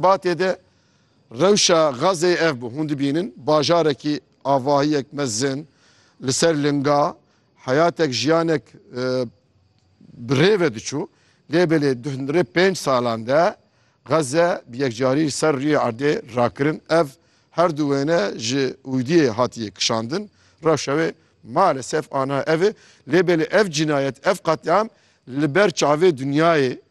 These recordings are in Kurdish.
Xebatê de rewşa Gazê ev bû. Hûn dibînin bajarekî avahiyek mezin li ser linga heyatek jiyanek bi rê ve diçû. Lê belê di hundirê pênc salan de Gaze bi yekcarî li ser rûyê erdê rakirin. Ev her du wêne ji ûdiyê hatiye kişandin. Rewşa wê malesef aniha ev e. Lê belê ev cinayet, ev qetlîam li ber çavê dinyayê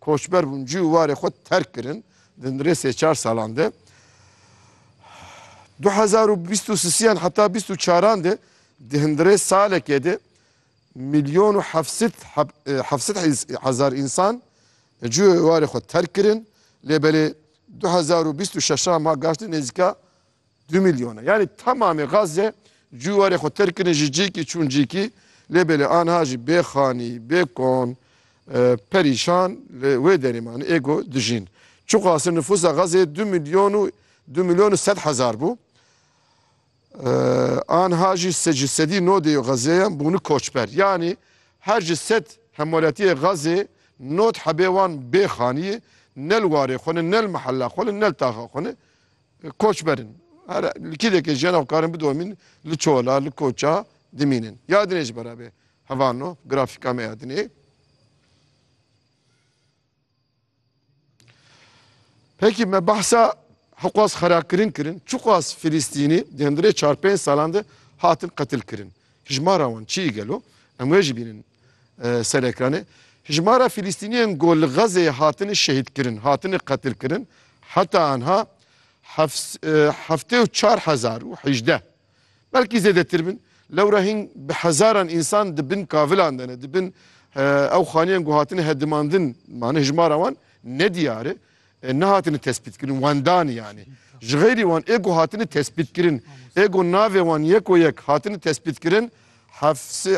Koçber bûn, cî û warê xwe terk kirin di rê sê çar salan de. Du hezar û bîst û sisiyan heta bîst û çaran de di hundirê salekê de milyon û hevsit hevsit hezar însan cî û warê xwe terk kirin lê belê du hezar û bîst û şeşan ma gaştin nêzîka Du milyon e. Yanî temamê Gazze cû warê xwe terk kirine ji cîkî çûn cîkî. Lê belê anha jî bê xanî, bê kon, perîşan li wê derê man ê ku dijîn. Çiqasî nifûsa Gazzeyê du milyon û du milyon û sed hezar bû. Anha jî ji sedî no dê Gazzeyan bûne koçber. Yanî her ji sed hemwelatiyê Gazzê nod hebê wan bê xanî ye, ne li warê xwe ne, ne li mihella xwe ne, ne li taxa xwe ne. Koçber in. Her li kêlekê jiyan xwe karin bidomîn li çola, li koça dimînin. Ya dinê ji bera vê heval no grafîka me ya dinê. Peki me bahsa hiqas xerakirin kirin. Çuqas Filistînî di hundirê çar pênc salan de hatin qetil kirin. Hijmara wan çi ye gelo? Em wê jî bînin ser ekranê. Hijmara Fîlîstîniyan ku li Xezeyê hatine şehîdkirin, hatine qetilkirin heta anha heftê û çar hezar û hejdeh belkî zêdetir bin. Lewra hîn bi hezaran însan di bin kavilan de ne, di bin ew xaniyan ku hatine hedimandin, mane hijmara wan nediyar e. Nehatine tespîtkirin wendan yanî ji xeyrî wan ê ku hatine tespîtkirin ê ku navê wan yeko yek hatine tespîtkirin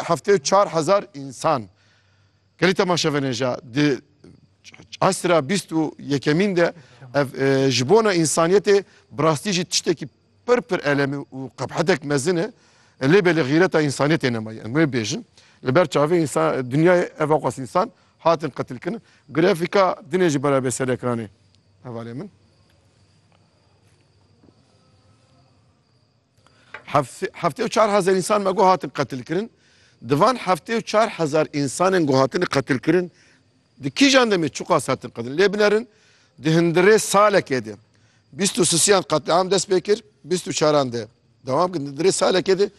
heftê û çar hezar însan gelî temaşevenêja di esra bîst û yekemîn de ev ji bona însaniyetê bi rastî jî tiştekî Pir pir elem e û qebhetek mezin e, lê belê xîreta însaniyê tê nema yên. Em wê bêjin. Li ber çavê însa dinyayê ev aqas însan hatin qetilkirin. Grafîka dinê jî berabê ser ekranê hevalê min. Heftê û çar hezar însan me got hatin qetilkirin. Di van heftê û çar hezar însanên got hatine qetilkirin, Di kîjan demê çiqas hatin qedin? Lê binerin di hindirê salekê de bîst û sisiyan qetliam dest pê kir, bîst û çaran de dewam kir. Di hindirê salekê de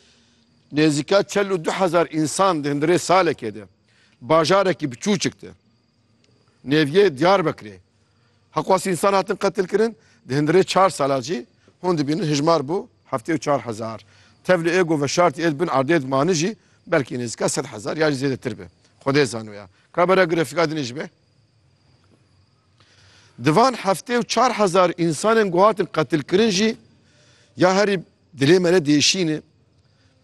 nêzîka çel û du hezar însan di hindirê salekê de bajarekî biçûçik de nêviyê Diyarbekirê heqwas însan hatin qetilkirin. Di hindirê çar sala jî hûn dibînin hijmar bû heftê û çar hezar. Tev li êgo veşartî ê di bin erdê de manijî belkî nêzîka sed hezar ya jî zêdetir be. Xwedê zano ya. Ka bera grafîka din jî be. Di van heftê û çar hezar însanên ku hatin qetilkirin jî ya herî dilê me re diêşîn e.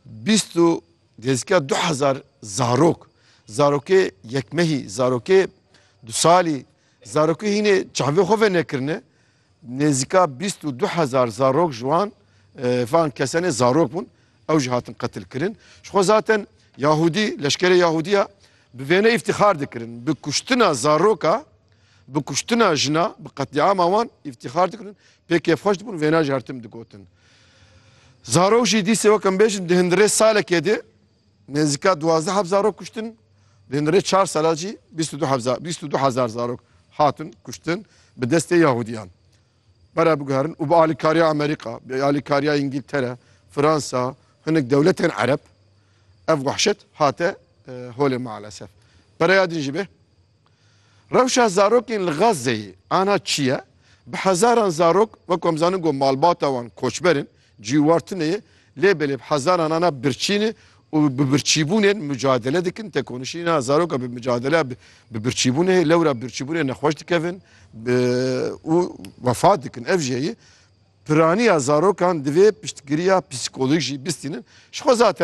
Bîst û nêzîka du hezar zarok, zarokê yekmehî, zarokê du salî, zarokê hînê çavê xwe venekirine Nêzîka bîst û du hezar zarok ji wan van kesenê zarok bûn. Ew jî hatin qetilkirin. Ji xwe zaten Yahûdî, leşkerê Yahûdî ya bi vêne îftîxar dikirin. Bi kuştina zaroka, bi kuştina jina, bi qetlîama wan îftîxar dikirin. Pê kêfxweş dibûn vêna jî her tim digotin. Zarok jî dîsê weke em bêjin di hundirê salekê de Nêzîka duwazdeh heb zarok kuştin, di nirê çar sala jî bîst û du heb za- bîst û du hezar zarok hatin kuştin bi destê Yahûdiyan. Pere biguherin û bi alîkariya Amerîka, bi alîkariya Îngîltere, Fransa, hinek dewletên Ereb ev wehşet hate eh, holê maalesef. Pereya din jî bê. Rewşa zarokên li Gazeyê ana çi ye? Bi hezaran zarok wek ku em zanin ku malbata wan koçber in, cî war tune ye lê belê bi hezaran ana birçîn e û bi birçîbûnên mucadele dikin. Tekonişîna zaroka bi mucadele bi birçîbûnê heye lewra birçîbûnê nexweş dikevin û wefat dikin. Ev jî heye piraniya zarokan divê piştgiriya psîkolojî bistînin. Ji xwe zaten